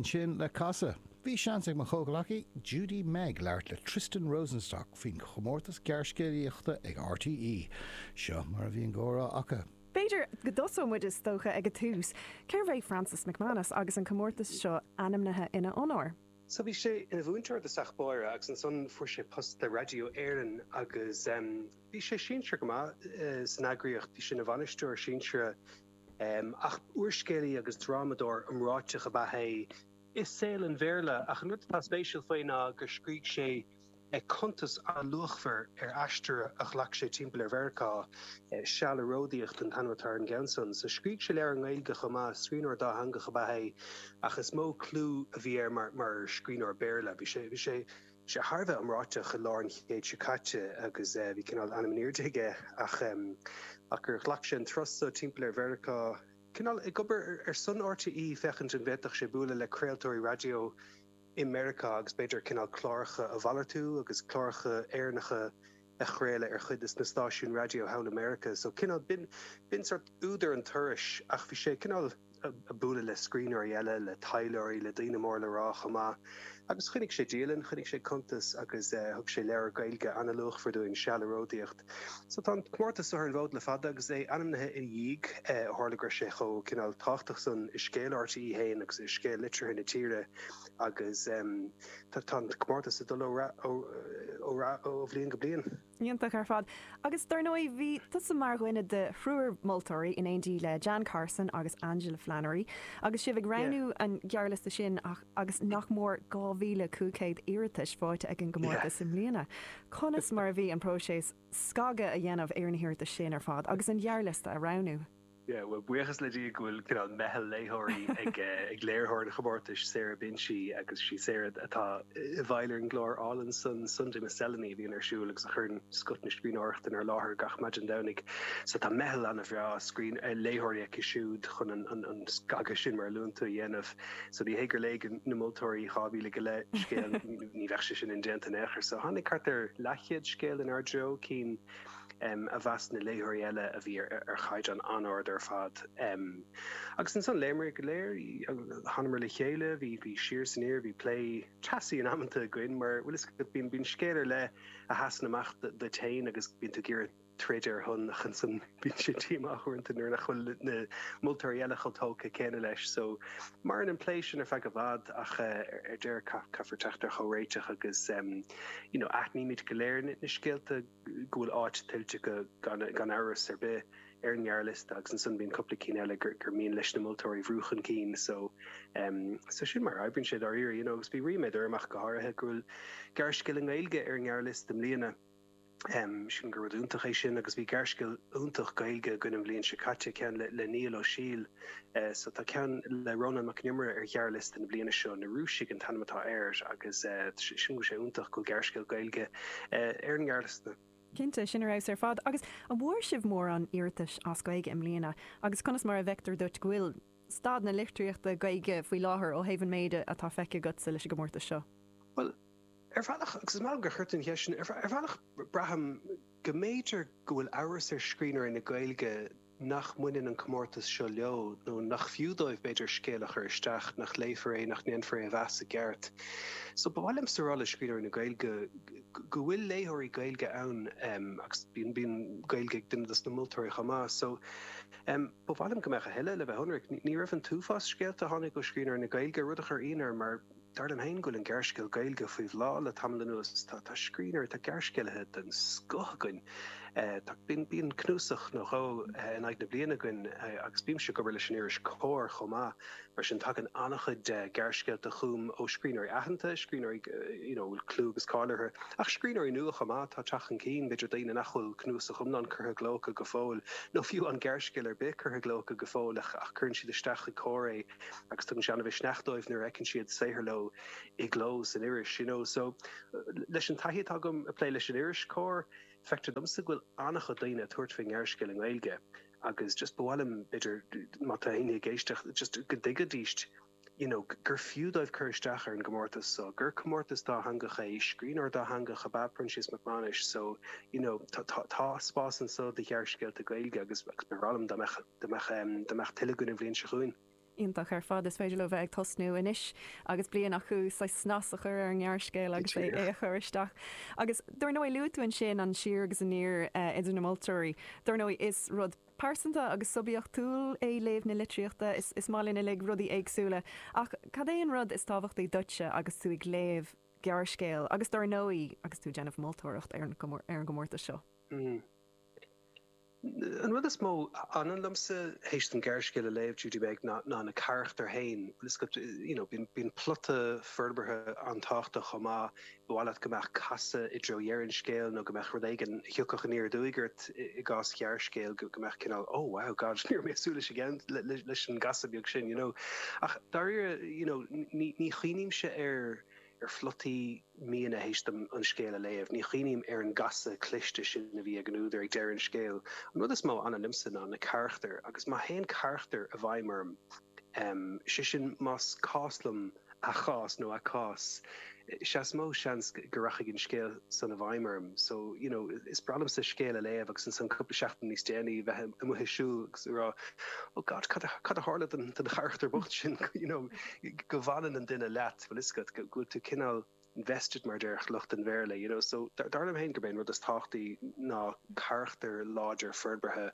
Linn sin le casadh, bhí seans ag mo chomhghleacaí Judy-Meg labhairt le Tristan Rosenstock faoin chomórtas gearrscéalaíochta ag RTÉ. Seo mar a bhí an comhrá acu. B'fhéidir go dtosóidh muid is dócha ag an tús, cérbh é Francis McManus agus an comórtas seo ainmnithe ina onóir? So bhí sé ina mhúinteoir i dtosach báire agus ansan fuair sé post le Raidió Éireann agus bhí sé sinsearach go maith san eagraíocht, bhí sé ina bhainisteoir sinsearach. Ach úrscéalaí agus drámadóir iomráiteach ab ea é i saol an Bhéarla, ach an rud atá spéisiúil faoi ná gur scrígh sé cuntas an-luachmhar ar aistear a ghlac sé timpeall ar Mheiriceá Seal ag Ródaíocht an t-ainm atá ar an gceann san. So scrígh sé leabhar i nGaeilge chomh maith, scríbhneoir dátheangach ab ea é, ach is mó clú a bhí air mar scríbhneoir Béarla. Bhí sé. sé thar a bheith iomráiteach i lár na haoise seo caite agus bhí cineál ainm in airde aige ach gur ghlac sé an turas so timpeall ar Mheiriceá, cineál ag obair ar son RTÉ féachaint an bhféadfadh sé bualadh le craoltóirí raidió i Meiriceá agus b'fhéidir cineál cláracha a mhalartú agus cláracha Éireannacha a chraoladh ar chuid de na stáisiúin raidió thall i Meiriceá. So cineál, b'in, b'in sórt údar an turais ach bhí sé cineál a' bualadh le scríbhneoirí eile, le taidhleoirí, le daoine móra le rá chomh maith agus choinnigh sé dialann, choinnigh sé cuntas agus eh thug sé leabhar Gaeilge an-luachmhar dúinn, Seal ag Ródaíocht. So tá an comórtas so ar an bhfód le fada agus é ainmnithe ina dhiaidh eh ó tharla go raibh sé chomh cineál tábhachtach san i scéal RTÉ féin agus i scéal litríochta na tíre agus ehm Tá an comórtas ag dul ó rath ó bhliain go bliain. Iontach ar fad. Agus dar ndóigh bhí tusa mar dhuine de thriúr moltóirí in éindí le Jan Carson agus Angela Flannery agus sibh ag roghnú an ghearrliosta sin agus nach mór 2,500 iarratais faighte ag an gcomórtas i mbliana. Conas mar a bhí an próiseas scagadh a dhéanamh ar na hiarratais sin ar fad agus an ghearrliosta a roghnú? Bhuel, buíochas le Dia go bhfuil cineál meitheal léitheoirí ag léiritheoir an chomórtais, Sarah Binchy, agus sí Sarah atá i bhfeighil ar an gclár álainn san Sunday Miscellany a bhíonn ar siúl agus a chuireann scoth na scríbhneoireachta inár láthair gach maidin Domhnaigh. So tá meitheal an-bhreá scríbh, eh, léitheoirí aici siúd chun an, an, an scagadh sin mar a luann tú a dhéanamh. So ní hé gur léigh na moltóirí dhá mhíle go leith scéal, ní bheadh sé sin indéanta in aon chor. So tháinig thart ar leathchéad scéal inár dtreo, cinn, a mheas na léitheoirí eile a bhí ar chaighdeán an-ard ar fad. Agus ansan, léimear go léir, thánamar le chéile, bhí siar is aniar, bhí plé teasaí in amanta againn, mar bhuel tá a fhios agat bíonn scéal ar leith a sheasann amach duit féin agus bíonn tú ag iarraidh troid ar a shon ach ansan bíonn sé díomách uaireanta nuair nach bhfuil na moltóirí eile chomh tógtha céanna leis so Maireann an plé sin ar feadh i bhfad ach ar deireadh caithfear teacht ar chomhréiteach agus you know aithnímid go léir na scéalta go bhfuil áit tuillte acu gan amhras ar bith ar an ngearrliosta agus ansan bíonn cúpla ceann eile gur mian leis na moltóirí a bhrú chun cinn so em so sin mar a oibríonn sé dáiríre you know agus bhí ríméad orm ach go háirithe go bhfuil gearrscéal i nGaeilge ar an ngearrliosta i mbliana. sílim gur rud iontach é sin agus bhí gearrscéal iontach Gaeilge againn an bhliain seo caite, ceann le le Niall Ó Siadhail so tá ceann le Rónán Mac an Iomaire ar ghearrliosta na bliana seo, Na Rúisigh an t-ainm atá air agus sílim go bhfuil sé iontach go bhfuil gearrscéal Gaeilge ar an ngearrliosta. Cinnte, sin ar fheabhas ar fad. Agus an bhfuair sibh mórán iarratais as Gaeilge i mbliana agus conas mar a fheictear duit go bhfuil staid na litríochta Gaeilge faoi láthair ó thaobh an méid atá feicthe agatsa leis an gcomórtas seo? Bhuel, Ar bhealach, agus is maith liom gur chuir tú an cheist sin, ar bhealach braithim go mb'fhéidir go bhfuil amhras ar scríbhneoirí na Gaeilge nach mbaineann an comórtas seo leo, nó nach fiú dóibh, b'fhéidir, scéal a chur isteach nach léifear é, nach ndéanfar é a mheas i gceart. Só, ba mhaith liomsa a rá le scríbhneoirí na Gaeilge go bhfuil léitheoirí Gaeilge ann, agus bíonn Gaeilge ag duine dos na moltóirí chomh maith. Só, ba mhaith liom go mbeadh a thuilleadh, le bheith ionraic. Ní raibh an t-uafás scéalta a tháinig ó scríbhneoirí na Gaeilge, rud a chuir ionadh orm, mar. Dar liom féin go bhfuil an gearrscéal Gaeilge faoi bhláth le tamall anuas. Tá scríbhneoirí, tá gearrscéalaithe den scoth againn. Bíonn cnuasach nó dhó in aghaidh na bliana againn agus bímse ag obair leis an iris Comhar chomh maith, mar sin tagann an-chuid gearrscéalta chugam ó scríbhneoirí aitheanta, scríbhneoirí a bhfuil clú agus cáil orthu, ach scríbhneoirí nua chomh maith atá ag teacht chun cinn, b'fhéidir daoine nach bhfuil cnuasach iomlán curtha i gcló acu go fóill, nó fiú aon ghearrscéal ar bith curtha i gcló acu go fóill ach cuireann siad isteach chuig Comhar é. agus tugann sé an-mhisneach dóibh nuair a fheiceann siad saothar leo i gcló san iris. You know, so, leis an taithí atá agam ag plé leis an iris Comhar, feictear domsa go bhfuil an-chuid daoine ag tabhairt faoin ngearrscéal i nGaeilge agus just ba mhaith liom, b'fhéidir, má tá éinne ag éisteacht, just go dtuigfidís, you know, gur fiú dóibh cur isteach ar an gcomórtas so, gur comórtas dátheangach é, scríbhneoir dátheangach ab ea Proinsias Mac Mánais so, you know, tá spás anso do ghearrscéalta Gaeilge agus ba bhreá liom dá mbeadh. dá mbeadh, dá mbeadh tuilleadh againn an bhliain seo chugainn. Iontach ar fad. Is féidir leo bheith ag tosnú anois agus bliain acu chun snas a chur ar an ngearrscéal agus é a chur isteach. Agus dár ndóigh, luaigh tú ansin an siar agus aniar idir na moltóirí. Dár ndóigh, is rud pearsanta agus suibiachtúil é léamh na litríochta. Is maith linn uilig rudaí éagsúla. Ach cad é an rud is tábhachtaí duitse agus tú ag léamh gearrscéil agus dár ndóigh agus tú ag déanamh moltóireacht ar an gcomórtas seo? Hmm. An rud is mó a fhanann liomsa théis dom gearrscéal a léamh, you know, ná na carachtair féin. Bíonn plota forbartha an-tábhachtach chomh maith. Ba mhaith leat go mbeadh casadh i dtreo dheireadh an scéil nó go mbeadh rud éigin a thiocfadh aniar aduaidh ort, i gcás ghearrscéil, go mbeadh cineál oh, wow, God, ní raibh mé ag súil leis an gcasadh beag sin, you know. Ach dáiríre, you know, ní chuimhnímse ar. ar phlotaí míonna théis dom an scéal a léamh. Ní chuimhním ar an gcasadh cliste sin a bhí ag an údar ag deireadh an scéil. An rud is mó a fhanann liomsa ná na carachtair agus má théann carachtar i bhfeidhm orm, sé sin más cás liom a chás nó a cás, sea is mó seans go rachaidh an scéal san i bhfeidhm orm. So, you know, is breá liomsa scéal a léamh agus ansan cúpla seachtain níos déanaí a bheith amuigh ag siúl agus ag rá, oh God, cad a tharla don charachtar bocht sin, you know, go bhfanann an duine leat. bhfuil fhios agat go bhfuil tú cineál invested mar deir lucht an Bhéarla you know so dar liom féin gurb é an rud is tábhachtaí ná carachtar láidir forbartha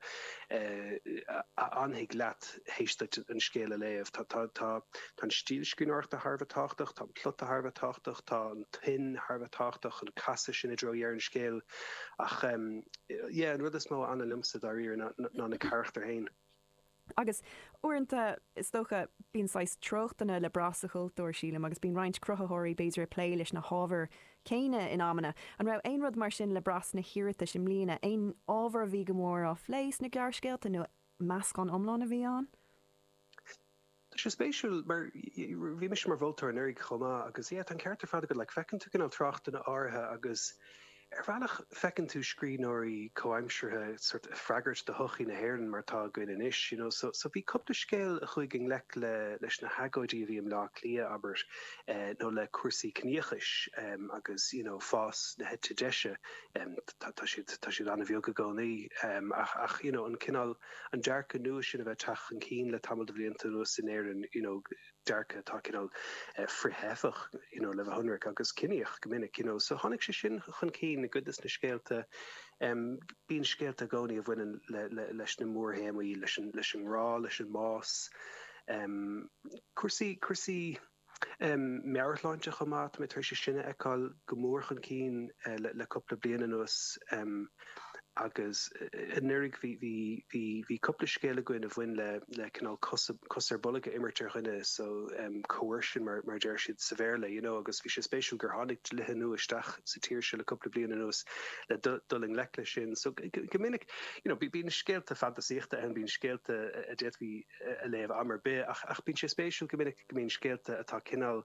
a fhanfaidh leat théis duit an scéal a léamh. Tá tá tá tá an stíl scríbhneoireachta thar a bheith tábhachtach, tá an plota thar a bheith tábhachtach, tá an tuin thar a bheith tábhachtach, an casadh sin i dtreo dheireadh an scéil ach umm yeah an rud is mó a fhanann liomsa dáiríre ná ná na carachtair féin. Agus uaireanta, is dócha, bíonn saghas treochtanna le brath sa chultúr, sílim, agus bíonn roinnt cruthaitheoirí b'fhéidir ag plé leis na hábhair chéanna in amanna. An raibh aon rud mar sin le brath sna hiarratais i mbliana? Aon ábhar a bhí go mór á phlé sna gearrscéalta nó meascán iomlán a bhí ann? Tá sé spéisiúil mar bhí mise mar mholtóir anuraidh chomh maith agus yeah tá an ceart ar fad agat, like feiceann tú cineál treochtanna áirithe agus, Ar bhealach, feiceann tú scríbhneoirí comhaimseartha sort of ag freagairt do shochaí na hÉireann mar atá againn anois, you know. So, bhí cúpla scéal a chuaigh i ngleic le, leis na hagóidí a bhí i mBleá Cliath, abair, eh, nó le cúrsaí ciníochais, em, agus, you know, fás na heite deise, em, tá, tá siad, tá siad an-bheag i gcónaí, em, ach, ach, you know, an cineál, an dearcadh nua sin a bheith ag teacht chun cinn le tamall de bhlianta anuas in Éirinn, you know, dearcadh atá cineál frith-theifeach, you know, le bheith ionraic, agus ciníoch go minic, you know. So tháinig sé sin chun cinn i gcuid de na scéalta. Bíonn scéalta i gcónaí a bhaineann leis na mórthéamaí, leis an ngrá, leis an mbás, cúrsaí, cúrsaí meabhairshláinte chomh maith. Tá mé tar éis sin a fheiceáil go mór chun cinn le cúpla bliain anuas. Agus anuraidh bhí cúpla scéal againn a bhain le cineál cos ar bolg a imirt ar dhuine, so coercion mar a deir siad sa Bhéarla, you know. Agus bhí sé spéisiúil gur tháinig dlíthe nua isteach sa tír seo le cúpla bliain anuas le dul i ngleic leis sin. So go minic, you know, bíonn scéalta fantasaíochta ann, bíonn scéalta a d'fhéadfaí a léamh am ar bith ach bíonn sé spéisiúil go minic go mbíonn scéalta atá cineál,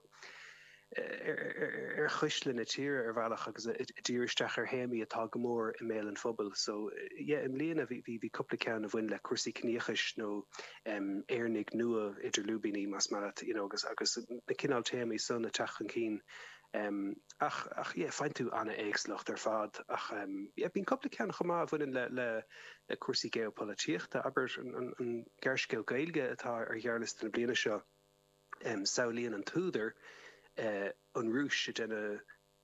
ar chuisle na tíre ar bhealach agus ag díriú isteach ar théamaí atá go mór i mbéal an phobail. So, yeah, i mbliana bhí, bhí, bhí cúpla ceann a bhain le cúrsaí ciníochais nó em, Éireannaigh nua, idir lúibíní más maith leat, you know, agus, agus na cineál téamaí san ag teacht chun cinn. Em, ach, ach yeah, faigheann tú an-éagsúlacht ar fad ach em, yeah, bíonn cúpla ceann chomh maith a bhaineann le, le, le cúrsaí geopolaitíochta, abair an, an, an gearrscéal Gaeilge atá ar ghearrliosta na bliana seo, Samhlaíonn an t-údar an Rúis ag déanamh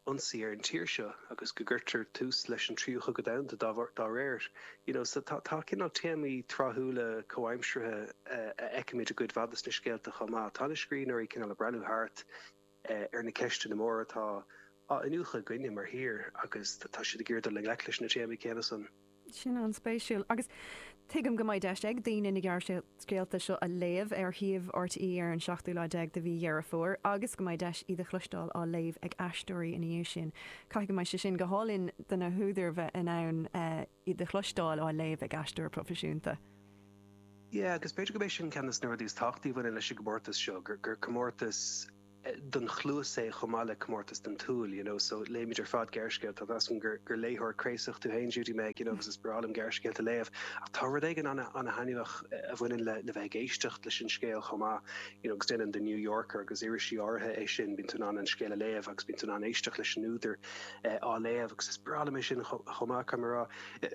ionsaí ar an tír seo agus go gcuirtear tús leis an Tríú Chogadh Domhanda dá réir, you know. So tá cineál téamaí tráthúla comhaimseartha a fheicimid i gcuid mhaith de na scéalta chomh maith. Tá na scríbhneoirí cineál ag breathnú thart ar na ceisteanna móra atá á iniúchadh againne mar thír agus tá siad ag iarraidh dul i ngleic leis na téamaí céanna san. Sin an-spéisiúil. Agus tuigim go mbeidh deis ag daoine na gearrscéalta seo a léamh ar shuíomh RTÉ ar an seachtú lá déag de mhí Dheireadh Fómhair agus go mbeidh deis iad a chloisteáil á léamh ag aisteoirí ina dhiaidh sin. Caithfidh go mbeidh sé sin go hálainn do na húdair bheith in ann iad a chloisteáil á léamh ag aisteoir proifisiúnta. Yeah, agus b'fhéidir gurb é sin ceann des na rudaí is tábhachtaí a bhaineann leis an gcomórtas seo, gur gur comórtas don chluas é chomh maith le comórtas don tsúil, you know, so léimid ar fad gearrscéalta agus measaim gur gur léitheoir craosach tú féin Judy Meg, you know, agus is breá liom gearrscéalta a léamh ach tá rud éigin ana ana thaitneamhach a bhaineann le le bheith ag éisteacht leis an scéal chomh maith, you know, agus déanann The New Yorker agus irisí áirithe é sin, bíonn tú in ann an scéal a léamh agus bíonn tú in ann éisteacht leis an údar. á léamh agus is breá liom é sin chomh maith, caithfidh mé a rá.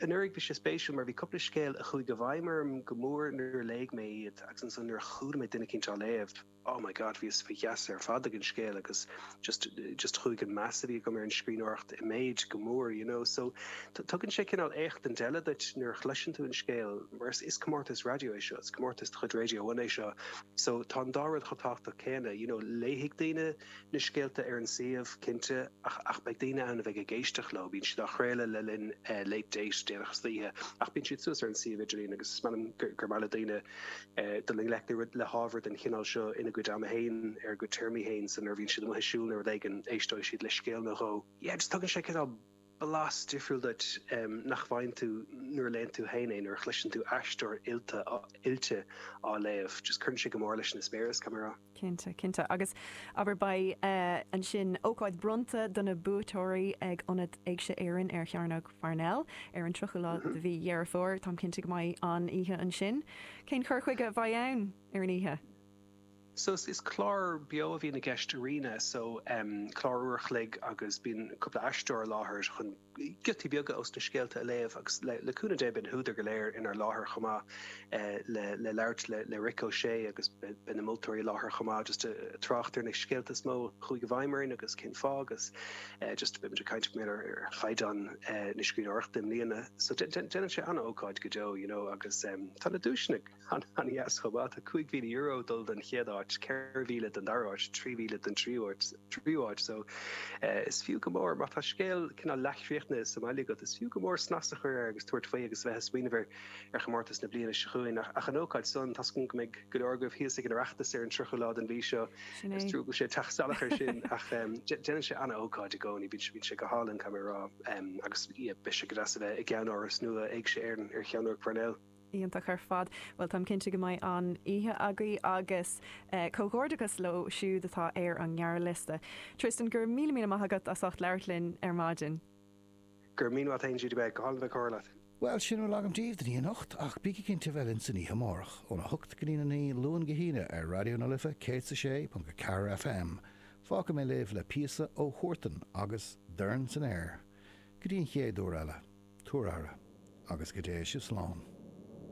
Anuraidh bhí sé spéisiúil mar bhí cúpla scéal a chuaigh i bhfeidhm orm go mór nuair a léigh mé iad agus ansan nuair a chuala mé duine eicínt á léamh, oh my God, bhíos faoi gheasa ar fad ag an scéal agus just, just chuaigh an meas a bhí agam ar an scríbhneoireacht i méid go mór, you know. So tugann sé cineál éachtaint eile duit nuair a chloiseann tú an scéal mar is comórtas raidió é seo, is comórtas de chuid Radio One é seo so tá an dá rud chomh tábhachtach céanna, you know, léifidh daoine, na scéalta ar an suíomh, cinnte, ach beidh daoine ann a bheidh ag éisteacht leo. Bíonn siad á gcraoladh le linn Late Date déanach istoíche, ach bíonn siad suas ar an suíomh idirlín agus measaim gur maith le daoine dul i ngleic le hábhar den chineál seo ina gcuid ama féin, ar a gcuid téarmaí féin. So nuair a bhíonn siad amuigh ag siúl nó rud éigin, éisteoidh siad le scéal nó dhó. Yeah, just tugann sé cineál. blas difriúil duit nach bhfaigheann tú nuair a léann tú féin é, nuair a chloiseann tú aisteoir oilte, oilte á léamh. Just cuireann sé go mór leis an eispéireas, caithfidh mé a rá. Cinnte, cinnte. Agus, abair, beidh ansin ócáid bronnta do na buaiteoirí ag Ionad Éigse Éireann ar Chearnóg Pharnell ar an tríochadú lá de mhí Dheireadh Fómhair. Táim cinnte go mbeidh an-oíche ansin. Cén cur chuige a bheidh ann ar an oíche? So is clár beo a bhíonn i gceist ar Arena so em clár uair a chloig agus bíonn cúpla aisteoir i láthair chun giotaí beaga ós na scéalta a léamh agus le le cúnamh Dé beidh na húdair go léir inár láthair chomh maith eh le le labhairt le le Rick O'Shea agus beidh beidh na moltóirí i láthair chomh maith just eh trácht ar na scéalta is mó a chuaigh i bhfeidhm orainn agus cén fáth agus eh just beidh muid ag caint b'fhéidir ar ar chaighdeán eh na scríbhneoireachta i mbliana so dé dé déanann sé an-ócáid go deo you know agus em tá na duaiseanna An-deas chomh maith. Tá €5,000 dul don chéad áit, 4,000 don dara áit, 3,000 don tríú áit so is fiú go mór. Má tá scéal cineál leathchríochnaithe sa mbaile agat, is fiú go mór snas a chur air agus tabhairt faoi agus a bheith ag smaoineamh ar chomórtas na bliana seo chugainn. Ach an ócáid sin, tá súil agam go mbeidh go leor agaibh thíos ag an Oireachtas ar an 30ú lá den mhí seo. Sin é. Is trua go bhfuil sé ag teacht salach air sin ach déanann sé an-ócáid i gcónaí. Bíonn sé go hálainn, caithfidh mé a rá, agus beidh sé go deas a bheith i gceannáras nua Éigse Éireann ar Chearnóg Pharnell. Iontach ar fad. Bhuel, táim cinnte go mbeidh an-oíche agaibh agus comhghairdeachas leo siúd atá ar an ngearrliosta. Tristan, go raibh míle míle maith agat as ucht labhairt linn ar maidin. Go raibh míle maith agat féin, Judy. Bhí sé go hálainn a bheith ag comhrá leat. Bhuel, sin a bhfuil agam daoibh don oíche anocht ach bígí cinnte a bheith linn san oíche amárach, óna hocht go dtí a naoi, Luan go hAoine, ar Raidió na Life 106.4 FM. Fágfaidh mé libh le píosa ó Huartan agus Dorn san Aer. Go dtí an chéad uair eile, tugaigí aire, agus go dté sibh slán.